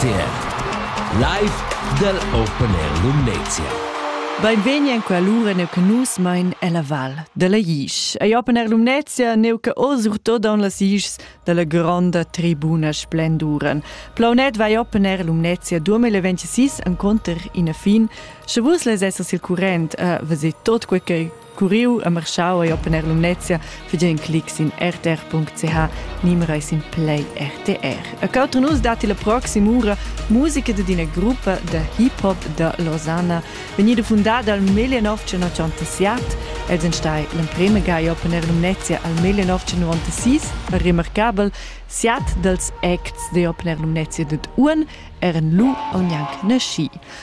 RTR Live dal Open Air Lumnezia. Beinvegni en quell'ura neu che nus mein ella val dalla Isch. Ei Open Air Lumnezia neu che oz surtot en las Ischs dalla gronda tribuna splenduran. Plaunet vai Open Air Lumnezia 2026 enconter ina fin. Sche vus les essas il current a eh, veser tot quei Curiu a Marschau ei Open Air Lumnezia fegen clic sin rtr.ch nimra e sin Play RTR. A cautr nus dati la proxima ura musica d'ina gruppa da hip hop da Losanna vegnida fundada al 1987. Els ein stai l'emprema ga e Open Air Lumnezia al 1996 a remarcabel siat dals acts de Open Air Lumnezia dad Uan eran lu aunc nasci.